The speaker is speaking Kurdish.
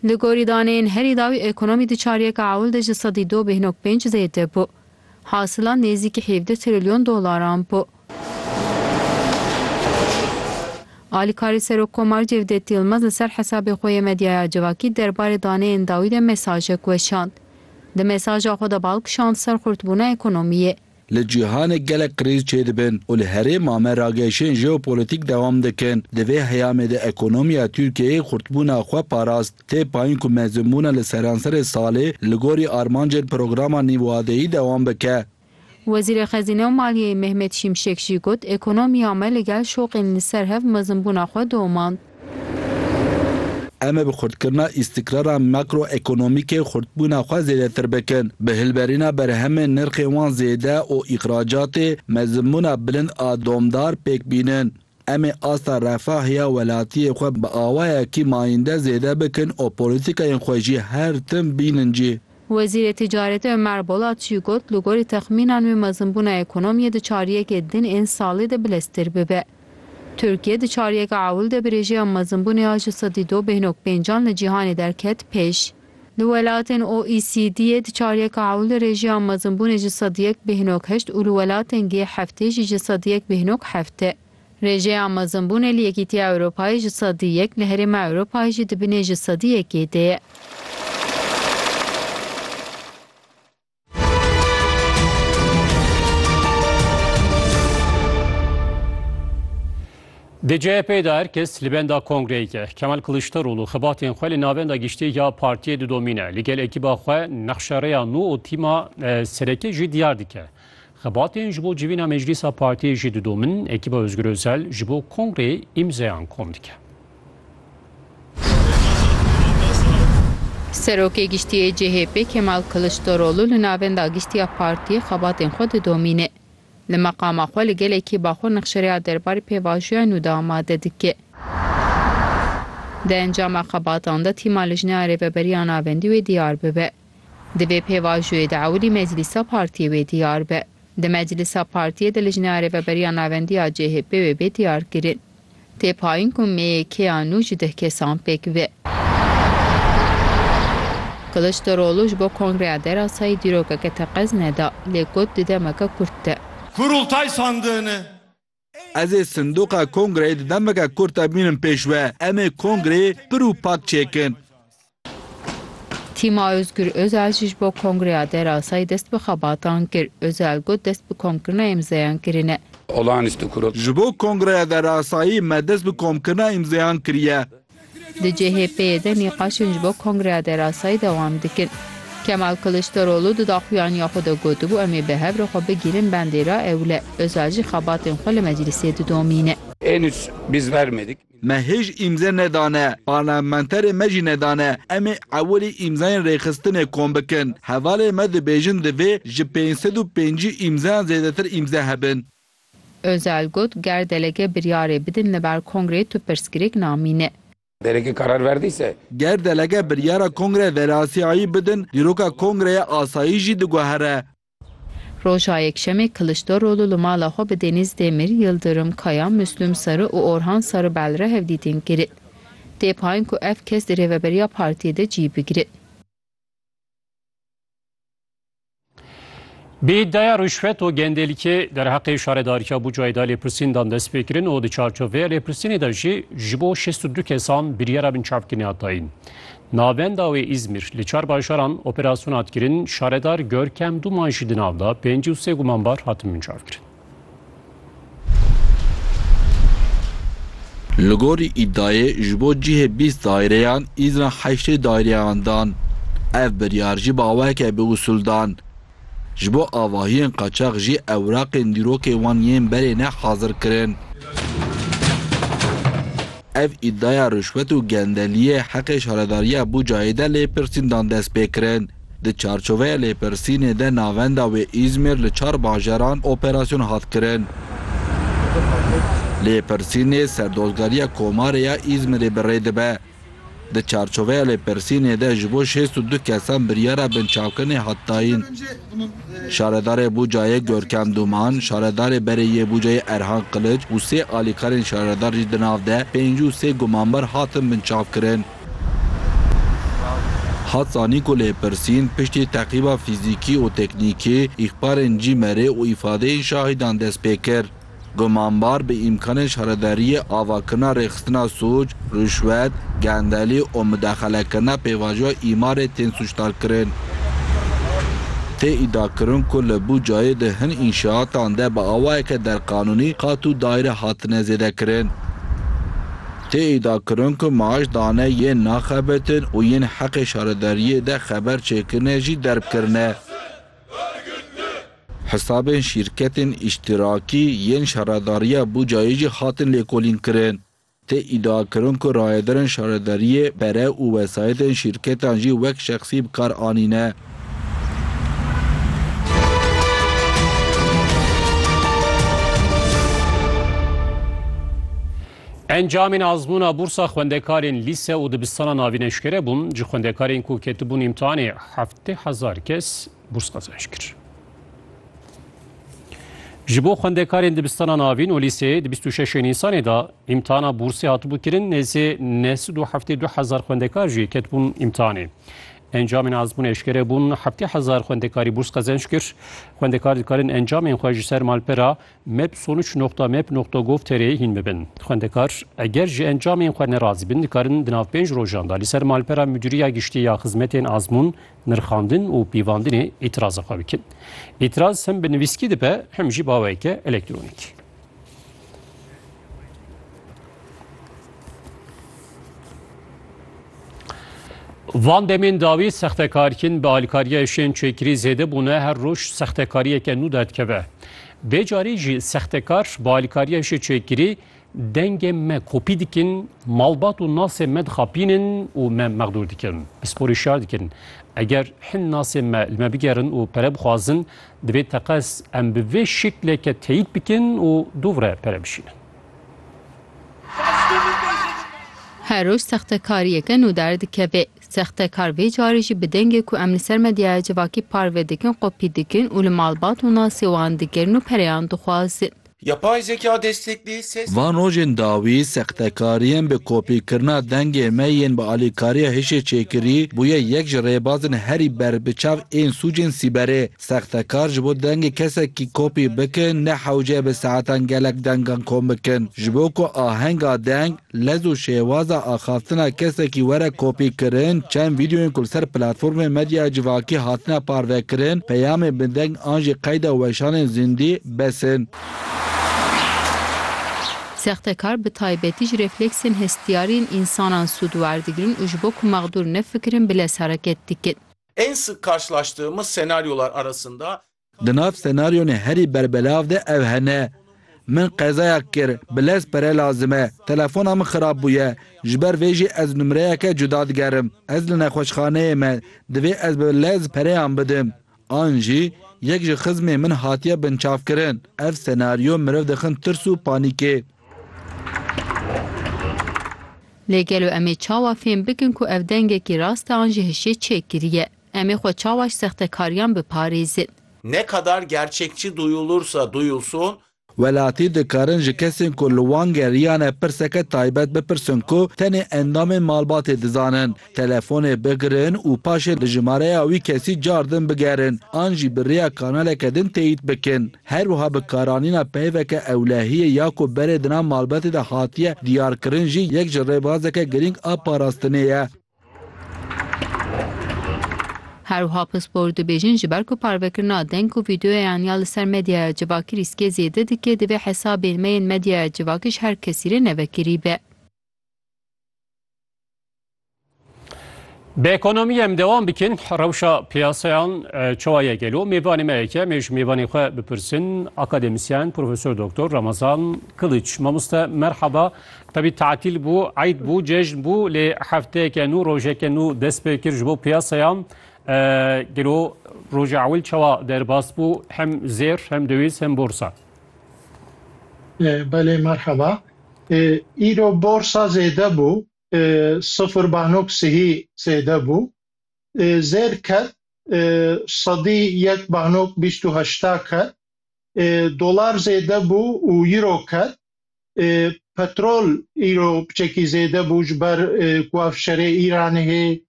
Li gorî daneyên herî dawî ekonomî di çaryeka ewil de ji sedî du bih nok pênc zêde bû. Hasila nêzîkî hevdeh trilyon dolaran bû. Alîkarê Serokkomar Cevdet Yilmaz li ser hesabê xwe yê medyaya civakî derbarê daneyên dawî de mesajek weşand. Di mesaja xwe de bal kişand ser xurtbûna ekonomiyê. Li cîhanê gelek krîz çêdibin û li herêma me rageşên jeopolîtîk dewam dikin. Di vê heyamê de ekonomiya Tirkiyeyê xurtbûna xwe parast. Tê payîn ku mezînbûna li seranserê salê li gorî armancên programa nîvwadeyî dewam bike. Wezîrê Xezîne û Maliyeyê Mehmet Şimşek jî got, Ekonomiya me li gel şoqên li ser hev mezinbûna xwe domand. Em ê bi xurtkirina îstikrara makroekonomîkê xurtbûna xwe zêdetir bikin. Bi hilberîna berhemên nirxên wan zêde û îxracatê me zimbûna bilind a domdar pêk bînin. Em ê asta refah ya welatiyê xwe bi awayekî mayînde zêde bikin û polîtîkayên xwe jî her tim bînin cî. Wezîrê Ticaretê Ömer Bolat jî got, Li gorî texmînan wê me zimbûna ekonomiyê di çariyekê din ên salê de bileztir bibe. Tirkiye di çaryeka ewil de bi rêjeya mezinbûnê ya ji sedî du bêhnok pêncan li cîhanê derket pêş. Li welatên OECD'ê di çaryeka ewil de rêjeya mezinbûnê ji sedî yek bêhnok heşt û li welatên G-heftê jî ji sedî yek bêhnok heft e. Rêjeya mezinbûnê li Yekîtiya Ewropayê ji sedî yek, li Herêma Ewropayê jî di binê ji sedî yekê de ye. Di CHP'ê de her kes li benda kongreyek e. Kemal Kiliçdaroglu xibatên xwe li navenda giştî ya partiyê didomîne. Li gel ekîba xwe nexşerêya nû û tîma serekê jî diyar dike. Xibatên ji bo civîna meclîsa partiyê jî didomin, ekîba Ozgur Ozel ji bo kongreyê îmzeyan kom dike. Serokê Giştî yê CHP'ê Kemal Kiliçdaroglu li navenda giştî ya partiyê xebatên xwe didomîne. Li meqama xwe li gelekî Baxûr nexşereya derbarê pêvajoya nû de amade dike. Di encama xebatan de tîma Lijneya Rêveberiya Navendî wê diyar bibe. Di vê pêvajoyê de ewilî meclîsa partiyê wê diyar be. Di meclîsa partiyê de Lijneya Rêveberiya Navendî ya CHP'ê wê bê diyarkirin. Tê payîn ku mêyê kêya nû ji deh kesan pêk be. Kiliçdaroglu ji bo Kongreya Derasayî dîrokeke teqez neda, lê got di demeke kurt de. Kurultay sandığını. Ez ê sindoqa Kongreyê di demeke kurt de bînim pêş we. Em ê Kongreyê pir û pak çêkin. Tîma Ozgur Ozel jî ji bo kongreya derasayî dest bi xebatan kir. Ozel got dest bi komkirina îmzeyan kirine. Ji bo kongreya derasayî me dest bi komkirina îmzeyan kiriye. Di CHP'ê de nîqaşên ji bo kongreya derasayî dewam dikin. Kemal Kiliçdaroglu di daxuyaniya xwe de gotibû em ê bi hev re xwe bigirin bendê re ewil e. Ozel jî xebatên xwe li meclîsê didomîne. Me hêj îmze nedane, parlamenterê me jî nedane. Em ê ewilî îmzayên rêxistinê kom bikin. Hevalên me dibêjin divê ji pênc sed û pêncî îmzayan zêdetir îmze hebin. Özel got, Ger delege biryarê bidin li ber kongrê tu pirsgirêk namîne. Delege karar verdiyse. Ger delege biryara kongre verasiyayî bidin dîroka kongreya asayî jî diguhere. Roja Yekşemê Kiliçdaroglu li mala xwe bi Denîz Demir, Yildirim, Kaya, Muslum Sarı û Orhan Sarı Belre hevdîtin kirin. Tê payîn ku ev kes di rêveberiya partiyê de cî bigirin. Bi îdaya rûşvet û gendelîkê derheqê şaredarîya Bucayê de lêpirsîndan dest pê kirin û di çarçovêya lêpirsînê de jî ji bo şêst û du kesan biryara binçavkirina dayîn. Navenda wê Îzmîr, li çar bajaran operasyona hat kirin, şaredar Görkem Duman jî di nav da, pêncî û sê gumanbar hatin mincavkirin. Li gorî îdayê ji bo cihê bîst daireyan Îzran heştê daireyan dan. Ev biryar jî baweke bi usul dan. Ji bo avahiyên qaçax jî ewraqên dîrokê wan yên berê ne hazir kirin. Ev îdaya rişwet û gendeliyê heqê şaredariya Bucayê de lêpirsîndan dest pê kirin. Di çarçoveya lêpirsînê de navenda wê Îzmir li çar bajaran operasyon hat kirin. Lêpirsînê serdozgariya Komarê ya Îzmirê bi rê dibe. Di çarçoveya lêpirsînê de ji bo şêst û du kesan biryara binçavkirinê hat dayîn. Şaredarê Bucayê Görkem Dûman, şaredarê berê yê Bucayê Erhan Qiliç û sê alîkarên şaredar jî di nav de pêncî û sê gumanbar hatin binçavkirin. Hat zanîn ku lêpirsîn piştî teqîba fîzîkî û teknîkî, îxbarên CİMER'ê û îfadeyên şahîdan dest pê kir. Gumanbar bi îmkanên şaredariyê avakirina rêxistina sûc, rûşwet, gendelî û midexelekirina pêvajoya îmarê tên sûcdarkirin. Tê îdiakirin ku li Bucayê di hin înşeatan de bi awayeke derqanûnî qat û daîre hatine zêdekirin. Tê îdiakirin ku maaş dane yên naxebitin û yên heqê şaredariyê de xeber çêkirine jî derbkirine. Hisabên şîrketên îştîrakî yên şaredariya Bucayê jî hatin lêkolînkirin. Tê îdiakirin ku rayedarên şaredariyê pere û wesayetên şîrketan jî wek şexsî bi kar anîne. Encamên azmûna bûrsa xwendekarên lîse û dibistana navîn eşkere bûn, ji xwendekarên ku ketibûn îmtihanê heftê hezar kes bûrs qezenç kir. Ji bo xwendekarên dibistana navîn û lîseyê di bîst û şeşê Nîsanê de îmtihana bûrsê hatibû kirin, nêzî neh sed û heftê du hezar xwendekar jî ketibûn îmtihanê. Encamên azmûn eşkere bûn, heftê hezar xwendekarî bûrs qezenç kir. Xwendekar dikarin encamên xwe ji ser malpera mapsonuç.map.gov.tr'ê hîn bibin. Xwendekar eger ji encamên xwe nerazî bin dikarin di nav pênc rojan de li ser malpera Mudîriya Giştî ya Xizmetên Azmûn, Nirxandin û Pîvandinê îtiraza xwe bikin. Îtiraz hem bi nivîskî dibe hem jî baweke elektronîkî. Van demên dawî sextekarkîn bi alîkariya şên çêkirî zêde bûne her roj sextekariyeke nû derdikeve. Vê carî jî sextekar bi alîkariya şê çêkirî dengê me kopî dikin, malbat û nasê me dixapînin û me mexdûr dikin. Pisporî şar dikin. Eger hin nasê me li me bigerin û pere bixwazin, Divê teqez em bi vê şikleke teyîd bikin û dûvre pere bişînin. Her roj sextekariyeke nû derdikeve. Sextekar vê carî jî bi dengê ku em li ser medyaya civakî parve dikin qopî dikin û li malbat û nasê wan digirin û pereyan dixwazin. Yapay zeka desteklî ses. Van rojên dawî, sextekariyên bi kopîkirina dengê me yên bi alîkariya hişê çêkirî, bûye yek ji rêbazên herî berbiçav ên sûcên sîberê. Sextekar ji bo dengê kesekî kopî bikin, ne hewce bi saetan gelek dengan kom bikin, ji bo ku ahenga deng, Lez û şêwaza axaftina kesekî were kopîkirin, çend vîdeoyên ku li ser platformên medyaya civakî hatine parvekirin, peyamên bi deng an jî qeyda weşanên zindî bes in. Sextekar bi taybetî ji refleksên hestiyarî yên însanan sûd werdigirin û ji bo ku mexdûr nefikirin bi lez hereket dikin. En sık karşılaştığımız senaryolar arasında Di nav senaryonê herî berbelav de ev hene, Min qezayak kir, bi lez pere lazim e, telefona min xirab bûye, ji ber vê jî ez numreyeke cuda digerim, ez li nexweşxaneyê me, divê ez bi lez pereyan bidim. An jî, Yek ji xizmên min hatiye binçavkirin. Ev senaryo meriv dixin tirs û panîkê. Lê gelo em ê çawa fêm bikin ku ev dengekî rast e an jî hişê çêkirî ye? Em ê xwe çawa ji sextekariyan biparêzin? Ne kadar gerçekçi duyulursa duyulsun. Welatî dikarin ji kesên ku li wan geriyane pirseke taybet bipirsin ku tenê endamên malbatê dizanin, telefonê bigirin û paşê li jimareya wî kesî car din bigerin an jî bi rêya kanaleke din teyît bikin. Her wiha bi karanîna peyveke ewlehiyê ya ku berê di nav malbatê de hatiye diyarkirin jî yek ji rêbazeke girîng a parastinê ye. Herwiha pispor dibêjin ji ber ku parvekirina deng û vîdeoyan ya li ser medyaya civakî rîskê zêde dike divê hesabên me yên medyaya civakî ji her kesî re nevekirî be. Bi ekonomiyê em dewam bikin. Rewşa piyasayan çawa ye gelo? Mêvanê me yek e. Em ê ji mêvanê xwe bipirsin. Akademisyen Profesor Doktor Ramazan Kiliç. Mamoste merhaba. Tevî tatîl bû, eyd bû, cejn bû lê hefteyeke nû, rojeke nû dest pê kir ji bo piyasaya. Gelo roja ewil çawa derbas bû hem zêr hem döwîz hem borsa? Belê merheba. Îro borsa zêde bû, sifir banok sihî zêde bû. Zêr ket, sedî yek banok bîst û heşta ket. Dolar zêde bû û îro ket. petrol îro piçekî zêde bû ji ber ku ev şerê Îranê hê.